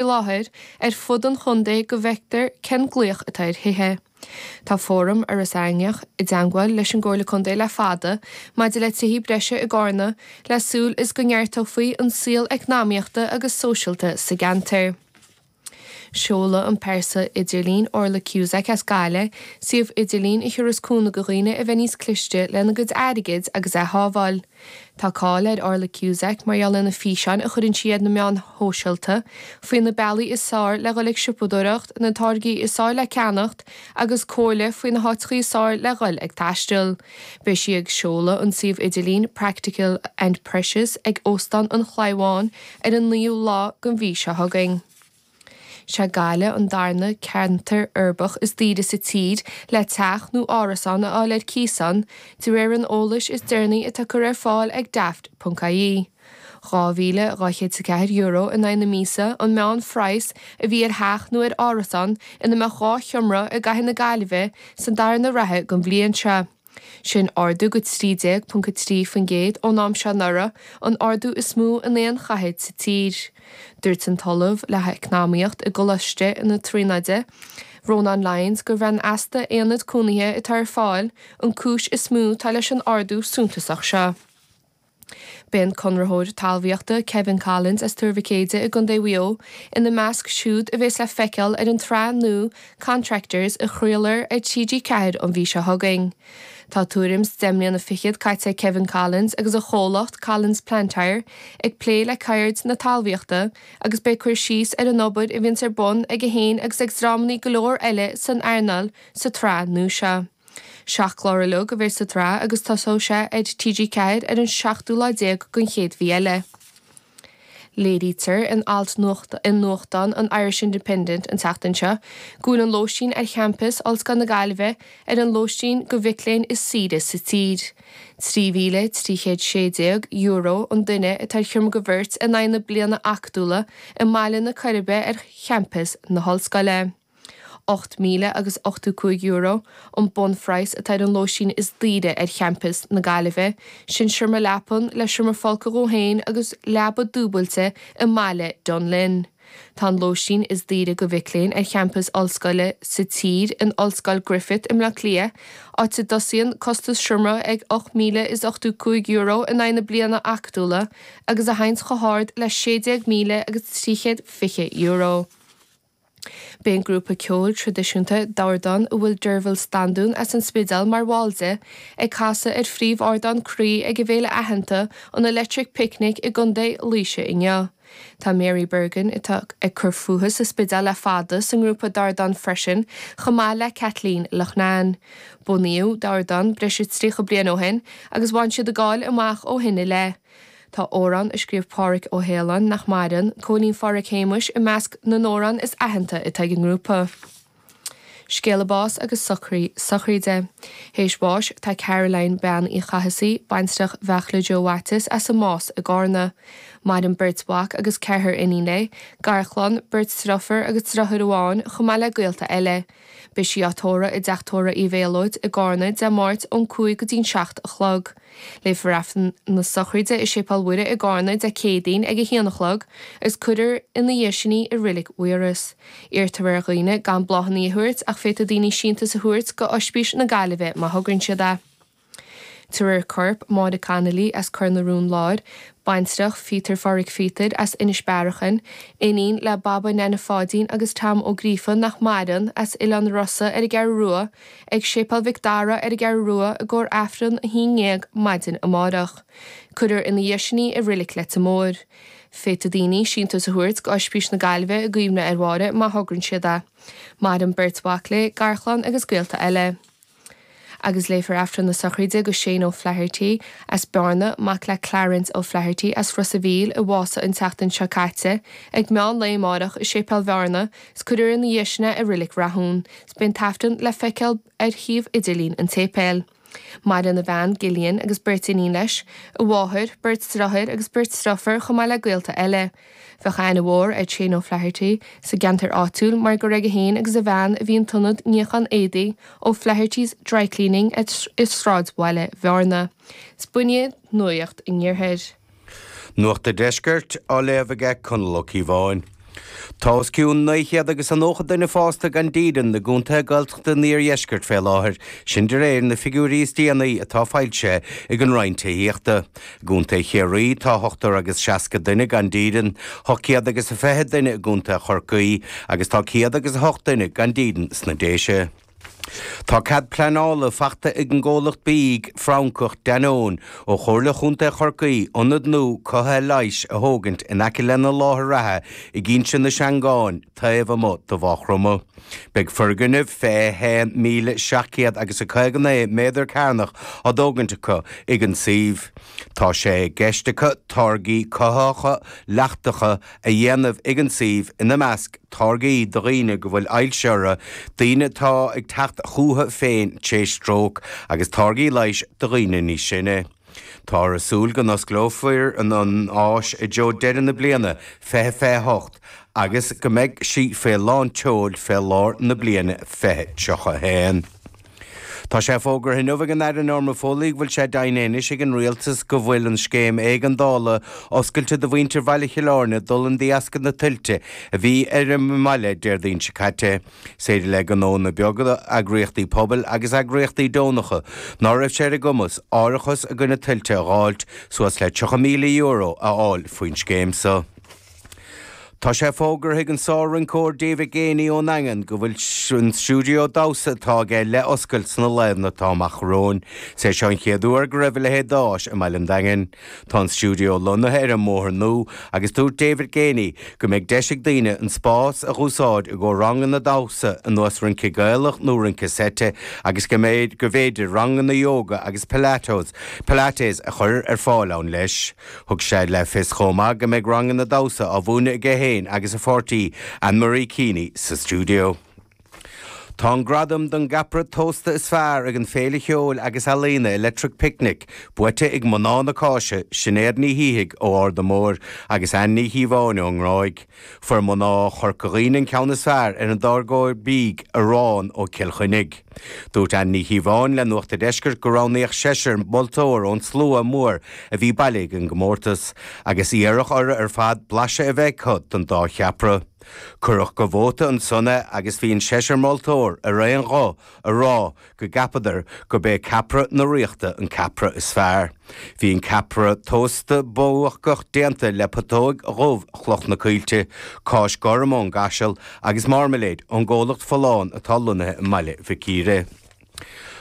i láthair ar fud an chontae go bhfeictear cén glaoch atá ar thithe. Tá fóram Iorras Aithneach i dteangmháil leis an gComhairle Contae le fada maidir le tithí breise i gCarna le súil is go neartófaí an saol eacnamaíochta agus sóisialta sa gceantar. Seolfaidh an phearsa idirlín Orla Cusack as Gaillimh, suíomh idirlín a thiúrfas cúnamh do dhaoine a bheith níos cliste lena gcuid airgid agus a shábháil. Tá cáil ar Orla Cusack mar gheall ar na físeáin a chuireann sí ar na meáin shóisialta faoi na bealaí is fearr le dhul ag siopadóireacht, na táirgí is fearr le ceannacht agus comhairle faoi na háiteachaí is fearr le dhul ag taisteal. Beidh sí ag seoladh an tsuímh idirlín Practical and Precious ag Óstán an Chlaí Bháin ar an 9ú lá den mhí seo chugainn. Is é Gaillimh an darna ceantar uirbeach is daoire sa tír le teach nó árasán a fháil ar cíos ann, de réir an eolais is deireanaí atá curtha ar fáil ag Daft.ie. €2,204 in aghaidh na míosa an meánphraghas a bhí ar theach nó ar árasán ina mbeadh dhá sheomra i gcathair na Gaillimhe sa darna ráithe den bhliain seo. sin ardú go 13.3% ón am seo anuraidh, an ardú is mó in aon chathair sa tír. Dúirt an tOllamh le hEacnamaíocht i gColáiste na Tríonóide, Ronan Lyons, gurb é an easpa aonad cónaithe atá ar fáil an cúis is mó atá leis an ardú suntasach seo. Beidh an conraitheoir talmhaíochta Kevin Collins as Tuar Mhic Éadaigh i gContae Mhaigh Eo ina measc siúd a bheas le feiceáil ar an tsraith nua Contractors a chraolfar ar TG4 an mhí seo chugainn. Tá tuairim 's deich mbliana fichead caite ag Kevin Collins agus a chomhlacht Collins Plant Hire ag plé le ceird na talmhaíochta agus beidh cur síos ar an obair a bhíonns ar bun aige féin agus ag dreamannaí go leor eile san earnáil sa tsraith nua seo. Seacht clár ar leith a bheas sa tsraith agus tosóidh sé ar TG4 ar an seachtú lá déag den chéad mhí eile. Léirítear in alt i nuachtán an Irish Independent an tseachtain seo go bhfuil an lóistín ar champas Ollscoil na Gaillimhe ar an lóistín go mhic léinn is saoire sa tír. €3,316 an duine atá ar sheomra go bheirt in aghaidh na bliana acadúla i mBaile na Coiribe ar champas na hOllscoile. €8,000 agus €85 an bunphraghas atá ar an lóistín is daoire ar champas na Gaillimhe, sin seomra leapan le seomra folctha dhó féin agus leaba dúbailte i mBaile Dún Linn. Tá an lóistín is daoire go mhic léinn ar champas ollscoile sa tír in Ollscoil Griffith i mBleá Cliath, áit a dtosaíonn costas seomra ag €8,085 in aghaidh na bliana acadúla agus a théanns chomh hard le €16,000 agus €320. Beidh an grúpa ceoil traidisiúnta, Dordán, a bhfuil Deirbhile Standún as an Spidéal mar bhall de, ag casadh ar phríomhardán Croí ag an bhféile aitheanta, an Electric Picnic i gContae Laoise inniu. Tá Mary Bergin, atá ag cur fúithi sa Spidéal le fada, sa ngrúpa Dordán freisin, chomh maith le Kathleen Loughnane. Bunaíodh Dordán breis is tríocha bliain ó shin, agus bhain siad a gcáil amach ó shin i leith. Tá amhrán a scríobh Pádhraic Ó hAoláin, nach maireann, Cóilín Phádhraic Shéamuis, i measc na n-amhrán is aitheanta atá ag an ngrúpa. Scéala báis agus socruithe sochraide. Théis bháis tá Caroline, Bean Uí Chathasaigh, baintreach Bheartla Joe Mhaitias as an Más i gCárna. Maireann beirt mhac agus ceathrar iníon léi, garchlann, beirt driofur agus driotháir amháin, chomh maith le gaolta eile. Beidh sí á tórramh i dteach tórraimh Uí Mhéalóid i gCárna Dé Máirt ón cúig go dtí'n seacht a chlog. Léifear Aifreann na sochraide i Séipéal Mhuire i gCárna Dé Céadaoin ag a haon a chlog agus cuirfear ina dhiaidh sin í i Reilig Mhaírois. Iarrtar ar dhaoine gan bláthannaí a thabhairt ach féadfaidh daoine síntiús a thabhairt go Oispís na Gaillimhe má thograíonn siad é. Tabharfar corp Máire Connolly as Cor na Rún Láir, baintreach Phíotair Phádhraic Phíotair as Inis Bearachain, iníon le Baba Neaine Pháidín agus Tom Ó Gríofa nach maireann, as Oileán Rosa ar an gCeathrú Rua, ag Séipéal Mhic Dara ar an gCeathrú Rua i gcomhair Aifreann a haon ndéag maidin amáireach. Cuirfear ina dhiaidh sin í i Reilig Leitir Móir. Féadfaidh daoine síntiús a thabhairt go Oispís na Gaillimhe i gcuimhne ar Mháire má thograíonn siad é. Maireann beirt mhac léi, garchlann agus gaolta eile. agus léifear Aifreann na sochraide go Shane O'Flaherty as Bearna, mac le Clarence O'Flaherty as Ros a' Mhíl, a bhásaigh an tseachtain seo caite, ag meán lae amáireach i Séipéal Bhearna, is cuirfear ina dhiaidh sin é i Reilig Rathúin, is beidh an tAifreann le feiceáil ar shuíomh idirlín an tséipéil. Maireann a bhean, Gillian, agus beirt iníon leis, a mháthair, beirt driotháir agus beirt driofar, chomh maith le gaolta eile, Bheadh aithne mhór ar Shane O'Flaherty sa gceantar áitiúil mar gur aige féin agus a bhean a bhí an t-ionad níocháin éadaí, O'Flaherty's Dry Cleaning, i sráidbhaile Bhearna. Is b'in é nuacht an iarthair. Nuacht an deiscirt á léamh aige Conall Ó Cíobháin. Tá os cionn dhá chéad agus a nócha duine fásta gan dídean i gcontaetha Gaeltachta an iardheiscirt fé láthair, sin de réir na figiúirí is déanaí atá foilsithe ag an Roinn Tithíochta. I gContae Chiarraí tá ochtar agus seasca duine gan dídean, tá céad agus a fiche duine i gContae Chorcaí agus tá céad agus a hocht duine gan dídean sna Déise. Tá cead pleanála faighte ag an gcomhlacht bídh Francach Danone ó Chomhairle Chontae Chorcaí ionad nua cothaithe leighis a thógaint in aice lena láthair reatha ag Inse na Seangán taobh amuigh de Mhaigh Chromtha. Beidh foirgneamh 21,700 agus a 59 méadar cearnach á thógaint acu ag an suíomh. Tá sé i gceist acu táirgí cothaitheacha leachtacha a dhéanamh ag an suíomh, ina measc, táirgí do dhaoine go bhfuil ailse orthu, daoine atá ag teacht chucu féin tar éis stróc, agus táirgí leighis do dhaoine níos sine. Táthar ag súil go n-osclófar an áis i dtreo deireadh na bliana 2028 agus go mbeidh sí fé lán tseoil fé lár na bliana 2031. Tá sé fógartha inniu ag an Aire Norma Foley go bhfuil sé deimhin anois ag an Rialtas go bhfuil an Scéim Éigeandála oscailte do mhuintir Bhaile Chill Airne d'fhulaing de dheasca na tuilte a bhí ar an mbaile Déardaoin seo caite. Is féidir le gnóanna beaga, eagraíochtaí pobail agus eagraíochtaí deonacha, ná raibh sé ar a gcumas árachas i gcoinne tuilte a dh'fháilt, suas le €30,000 a fháil faoin scéim so. Tá sé fógartha ag an sár-rinceoir David Geaney ón Daingean go bhfuil an stiúideo damhsa atá aige le oscailt sna laethanta atá amach romhainn. Is é seo an chéad uair go raibh a leithéid d'áis i mbaile an Daingin. Tá an stiúideo lonnaithe ar an mBóthar Nua agus dúirt David Geaney go mbeidh deis ag daoine an spás a dh'úsáid i gcomhair ranganna damhsa ar nós rince Gaelach nó rince seite agus go mb'fhéidir ranganna ióga agus pilates pilates a chur ar fáil ann leis. Thug sé le fios chomh maith go mbeidh ranganna damhsa á múineadh aige féin agus a pháirtí, Anne-Marie Keeney, sa stiúideo. Tá an gradam don gCeapaire Tósta is Fearr ag an féile cheoil agus ealaíona Electric Picnic buaite ag Mná na Cáise, Sinéad Ní Shíthigh ó Ard a' Bhóthair agus Ann Ní Chíobháin ón nGráig. Fuair mná Chorca Dhuibhne an ceann is fearr ar an dtáirgeoir bídh Arán ó Chill Chainnigh. Dúirt Ann Ní Chíobháin le Nuacht a' Deiscirt gur roghnaíodh seisear moltóir ón tslua mór a bhí bailithe ag an gcomórtas, agus iarradh orthu ar fad blaiseadh a bheith acu don dá cheapaire. Cuireadh go vóta ansan é agus bhí an seisear moltóir ar aon ghuth a rá go gceapadar gurb é ceapaire na ríochta an ceapaire is fearr. Bhí an ceapaire tósta buacach déanta le putóig dhubh Chloch na Coillte, cáis gorm ó Chaiseal agus marmalade ón gcomhlacht Folláin atá lonnaithe i mBaile Mhic Íre.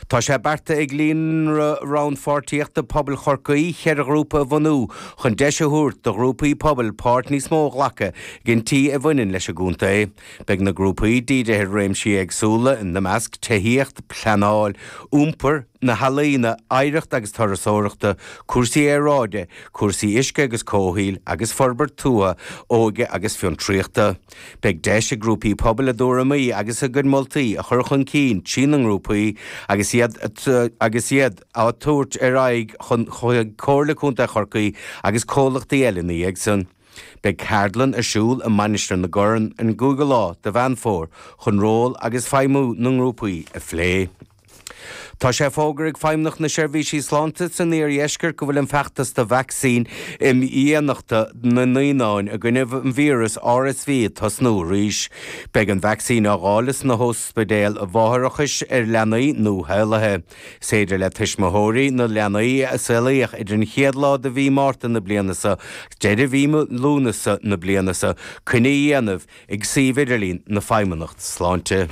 Tá sé beartaithe ag Líonra Rannpháirtíochta Pobail Chorcaí ceithre ghrúpa a bhunú chun deis a thabhairt do ghrúpaí pobail páirt níos mó a ghlacadh i gcinntí a bhaineann leis an gcontae. Beidh na grúpaí dírithe ar réimsí éagsúla, ina measc, tithíocht, pleanáil, iompar, na healaíona, oidhreacht agus turasóireacht, cúrsaí aeráide, cúrsaí uisce agus comhshaoil, agus forbairt tuaithe, óige agus fiontraíochta. Beidh deis ag grúpaí pobail a dtuairimí agus a gcuid moltaí a chur chun cinn trí na ngrúpaí agus iad á dtabhairt ar aghaidh chun chuig Comhairle Contae Chorcaí agus comhlachtaí eile na dhiaidh san. Beidh ceardlann ar siúl i Mainistir na Corann an gcúigiú lá de Mheán Fómhair chun ról agus feidhmiú na ngrúpaí a phlé. Tá sé fógartha ag Feidhmeannacht na Seirbhíse Sláinte san iardheisceart go bhfuil an feachtas do vacsaín imdhíonachta na naíonán i gcoinne an víreas RSV ag tosnú arís. Beidh an vacsaín á dháileadh sna hospidéil mháithreachais ar leanaí nuashaolaithe. Is féidir le tuismitheoirí na leanaí a saolaíodh idir an chéad lá de mhí Márta na bliana seo agus deireadh mhí Lúnasa na bliana seo coinne a dhéanamh ag suíomh idirlín na Feidhmeannacht Sláinte.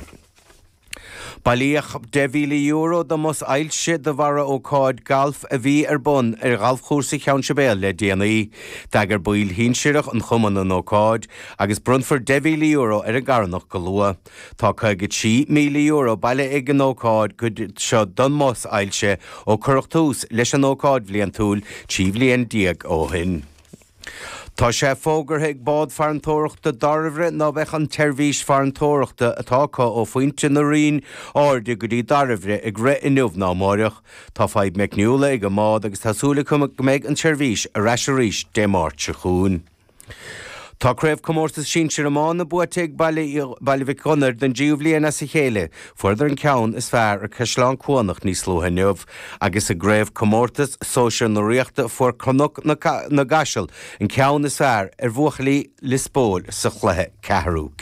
Bailíodh €10,000 do Bhus Ailse de bharr ócáid ghailf a bhí ar bun ar ghalfchúrsa Cheann Sibéal le déanaí. D'eagraigh baill shinsearacha an chumainn an ócáid agus bronnfar €10,000 ar an gcarthanacht go luath. Tá €53,000 bailithe ag an ócáid go dtí seo don mBus Ailse ó cuireadh tús leis an ócáid bhliantúil trí bhliain déag ó shin. Tá sé fógartha ag Bád Farantóireachta Dairbhre ná beidh an tseirbhís farantóireachta atá acu ó Phointe na Rinne Airde go dtí Dairbhre ag rith inniu ná amáireach. Tá fadhb meicniúla ag an mbád agus tá súil acu go mbeidh an tseirbhís ar ais arís Dé Máirt so chugainn. Tá Craobh Comórtas Sinsir Iomána buaite ag Baile Uí Dhuibh don dtríú bhliain as a chéile. Fuaireadar an ceann is fearr ar An gCaisleán Cuanach níos luaithe inniu, agus i gCraobh Comórtas Sóisear na Ríochta fuair Cnoc na gCaiseal an ceann is fearr ar bhuachaillí Lios Póil sa chluiche ceathrú